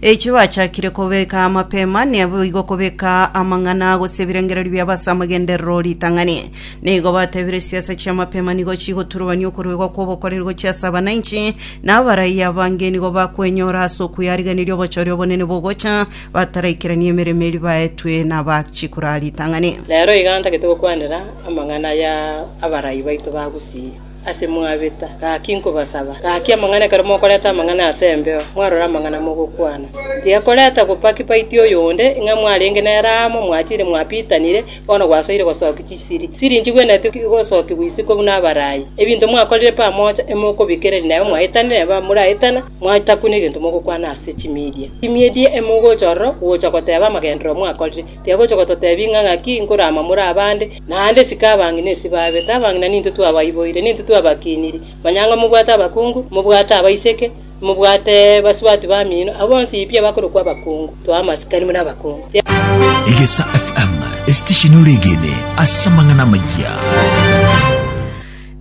Eki bachakire kobeka amapema naboigo kobeka amang'ana gose ebirengererio biabo ase amagenderero 'ritang'ani. Nigo batebire siasa chi'amapema nigo chigoturubania okoruegwa kw'obokoreri gochia ase abananchi, na abaraiyo abange nigo bakwenyora ase okweyariganiria obochore obonene bogocha bataraikirania emeremo eria baetwe nabachikora ritang'ani. Rero iga ntagete gokwanera amang'ana ya abarai baito ba gusii. Ase mwabeta, gaki nkobasaba, gaki amang'ana ekero mokoreta amang'ana ase embeo, mwarore amang'ana mogokwana. Tiga koreta gopaki paiti oyonde, ng'a mwarenge nere amo, mwachire mwabitanire, bono gwasoire gosokia chisiri. Siri nchigwenereti gosokigwa isiko buna abarai. Ebinto mwakorire pamoja, emokobikereria nabo mwaitanire nabo abamoraetana, mwaita kune egento mogokwana ase chimidia. Chimidia emogocha ororo gocha goteba amagenderero mwakorire. Tiga gocha gototebia ng'a ng'aki nkorama more abande, Naende isiko abang'ina esi baabete, abang'ina nintwe twabaiboire, nintwe twabakiiniri. Manya ng'a mobwate abakungu, mobwate abaiseke, mobwate basubati bamino, abwo bonsi pi abakorokwa abakungu. Toa amasikani buna abakungu. Egesa FM, esitesheni oregene ase amang'ana amayia.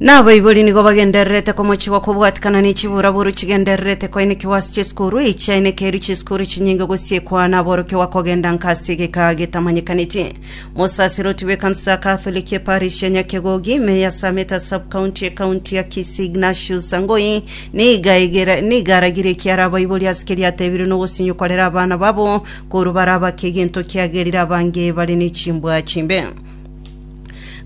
Nabaibori nigo bagendererete komochigwa kobwatikana ne chiburaburu chigendererete koinekigwa ase chisukuru. Echiainekeiru chisukuru chinyinge gosiekwa naborokigwa kogenda nka ase egeka getamanyekaneti. Mosasiroti bw'ekanisa ya Katholiki eparish ya Nyakegogi ime ya Sameta Sub-County ekaunti ya Kisii Ignatius Sangoi niga egera- niga aragira ekiara abaibori ase keria atebirwe nogosinyo kwarera abana babo korwa bare abake egento kiagerire abange bare ne chimbwa chimbe.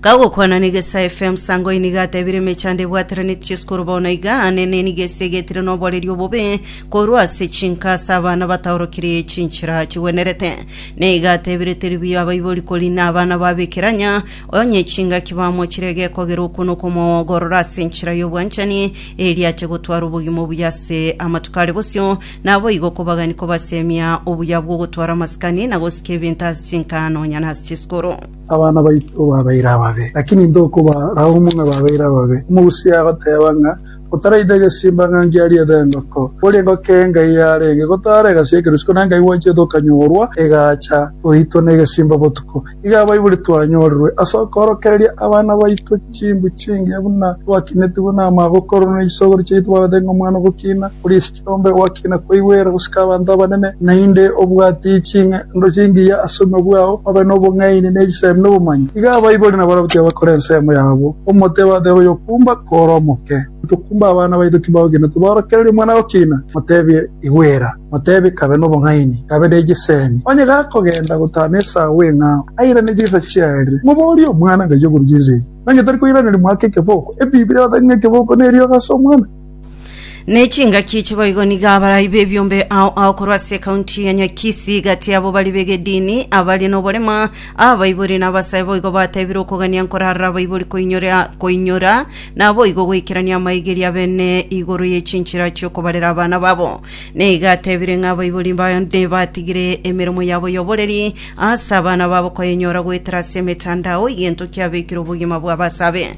Kagokwana na Egesaa FM, Sangoi nigo atebire emechando ebwateraneti chesukuru bono iga aa nene niga esegetire noboreri obobe Korwa ase chinka ase abana bataorokirie chinchera chigwenerete, nigo atebire Teribio abaibori kori nabana ba Bekeranya, onye chingaki bamochire egekogera okwo nokomoogorora ase enchera y'obwanchani, erio ache gotwara obogima obuya ase amatuko are bosio, naboigo okobagani kobasemia obuya bw'ogotwara amasikani na gosika ebinto ase chinka nonya nase chisukuru. Abana baito babeire ababe, lakini intwe okobaraumwa ng'a babeire ababe. Omogusi agoteeba ng'a Otaraite egesimba ng'a ngiarie ete engoko, kori engoko engai yarenge gotaara egasia ekerusuko, na engai gwancherete okanyorwa egaacha goitwa negesimba botuko. Iga abaibori twanyorerwe ase okoorokereria abana baito chimbu chingiya buna twakinetigwe namagokorwa na isogoro chiaito barabate ng'a omwana ogokina, oria esike. Nombe gwaki nakweigwera gosika abanto abanene? Naende obwate ching'ando chingiya ase obogima bwao, obe nobong'aini ne chisemi nobomanyi. Iga abaibori na barabwo tibakore ensemo yabo, omote bateba oyokumba kore omoke. Tokumba abana baito ki bagokiina, tiborokereria omwana agokiina, motebie, Igwera, motebie, Kabe nobong'aini, kabe ne chisemi. Onye gakogenda gotana esaa bw'eng'ao, airane chinsa chiarire, moborie omwana ngaki okorwa chinsa echi. Nonye tari koiraneria mwake ekeboko. Ebibilia ebatebia ng'a ekeboko neriogi ase omwana. Ne chingaki echi boigo nigo abarai b'ebiombe ao ao korwa ase ekaunti ya Nyakisi gati yabo bari b'egedini abare noborema, abaibori na abasae boigo bateebire okogania nkorarora abaibori koinyora koinyora naboigo goikerania amaegeri abene igoro ye chinchera chi'okobarera abana babo. Na iga ateebire ng'a abaibori bande batigire emeremo yabo y'oboreri ase abana babo koyenyora goetera ase emetandao egento kiabekire obogima bw'abasabe.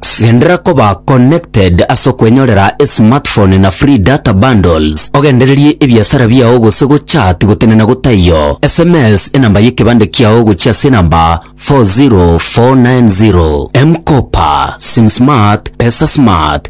Genderera koba connected ase okwenyorera esmartphone na free data bundles, ogendererie ebiasara biao gose gochat gotenena gotaiyo. Sms enamba y'ekebande kiao gochia ase enamba 40490. M-Kopa, SimSmart, PesaSmart.